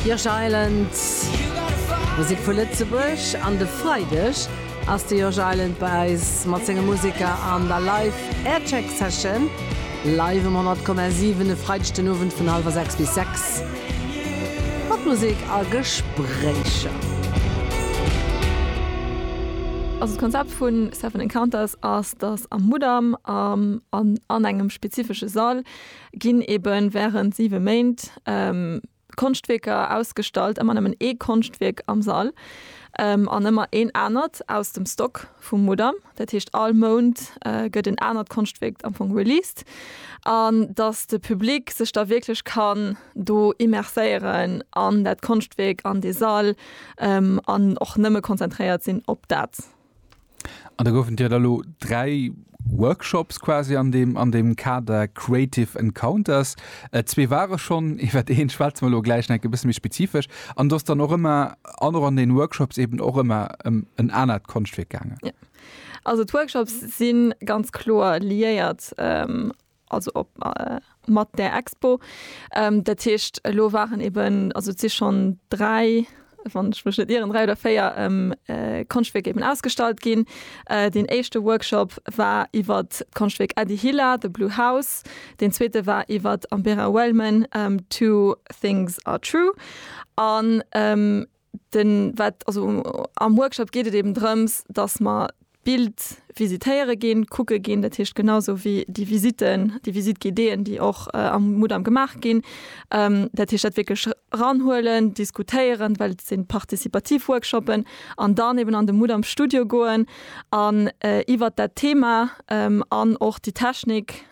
Josh Island, Musek vu Lëtzebuerg an de Freideg ass de Josh Island bei eis mat senge Museker an der Live Aircheck Session. Live um 100,7 e Freideg den Owend vun hallwer 6 bis 6 mat Musek a Gespréicher. Also d'Konzept vu Seven Encounters ass, dass am Mudam an engem spezifesche Sall ginn ebe wärend siwe Méint Konschtwierker ausgestallt, ëmmer nëmmen ee Konschtwierk am Sall an ëmmer een anert aus dem Stock vum Mudam. Dat heescht all Mount gëtt en anert Konschtwierk am Fong released an datt de Public sech da wierklech kann do immerséieren an dat Konschtwierk, an dee Sall an och nëmme konzentréiert sinn op dat. An da goufen dir da lo dräi Workshops quasi an deem, an deem Kader Creative Encounters. Äh, zwee ware schonn, iwwert een schwätze mer lo gläich nach e bësse méi spezifesch. An do ass dann och ëmmer, an och an deene Workshops eeben och ëmmer ëm en anert Konschtwierk gaangen. Jo, also d'Workshops si ganz kloer liéiert also op mat der Expo ähm, dat heescht lo waren eben also si schon drei wann ich mech net ieren drei oder véier ähm, äh, Konschtwierk eben ausgestallt ginn. Äh, den éischte Workshop war iwwer d'Konschtwierk Eddie Hilla, The Blue House. Den zweete war iwwer Ambera Wellman, ähm, Two Things Are True. An ähm, Den wat also am Workshop geet et eben drëms, dass mer d'Bild visitéiere ginn, kucke ginn, dat heescht genausou wéi déi Visiten, déi Visite guidéeën, déi och am Mudam gemaach ginn. Dat heescht dat wierklech ranhuelen, diskutéieren, well et sinn participativ Workshoppen, an dann eben an de Mudam Studio goen an iwwert dat Thema an och déi Technik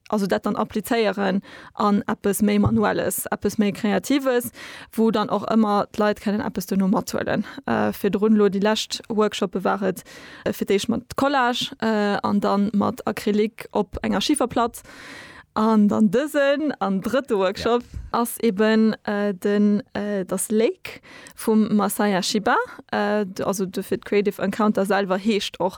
also dat dann applizéieren an eppes méi Manuelles, eppes méi Kreatives, wou dann och ëmmer d'Leit kënnen eppes duerno mathuelen. Virdrun elo déi lescht Workshoppe war et fir d'éischt mat Collage an da mat Acrylic op enger Schiferplatt an dann dësen an drëtte Workshop ass eben den Das Lake vum Masaya Shiba, also dofir d'Creative Encounter selwer heescht och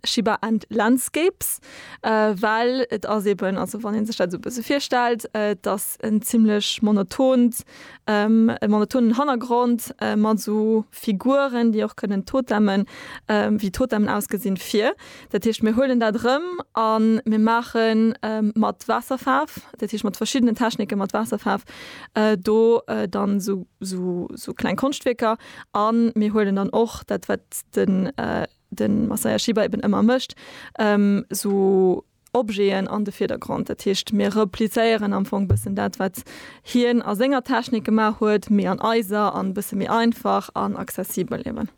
Shiba and Landscapes. Well et ass eben, also wann ee sech dat esou e bësse virstellt, et ass en zimlech monotont, e monotonen Hannergrond mat esou Figuren, déi och kënnen Totemmen, wéi Totemmen ausgesinn, vir. Dat heescht, mir huelen dat erëm a mir maache mat Waasserfaarf, dat heescht mat verschiddenen Technike mat Waasserfaarf do dann esou, esou kleng Konschtwierker a mir huelen dann och dat, wat de den Masaya Shiba eben ëmmer mécht, esou Objeten an de Virdergrond. Dat heescht, mir replizéieren am Fong bëssen dat, wat hien a senger Technik gemaach huet, mee an eiser an e bësse méi einfach an accessibel eben.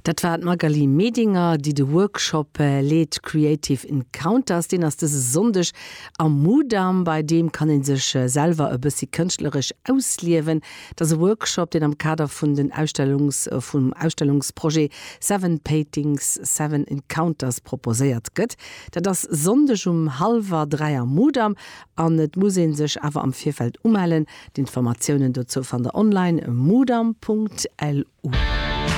Dat war d'Magali Medinger, déi de Workshop leet Creative Encounters. Deen ass dëse Sonndeg am Mudam. Bei deem kann ee sech selwer e bëssi kënschtleresch ausliewen. Et ass e Workshop, deen am Kader vun den Ausstellungs vum Ausstellungsprojet Seven Paintings, Seven Encounters proposéiert gëtt. Dat ass Sonndeg um hallwer dräi am Mudam an et muss ee sech awer am Virfeld umellen. D'Informatiounen dozou fannt der online, mudam.lu.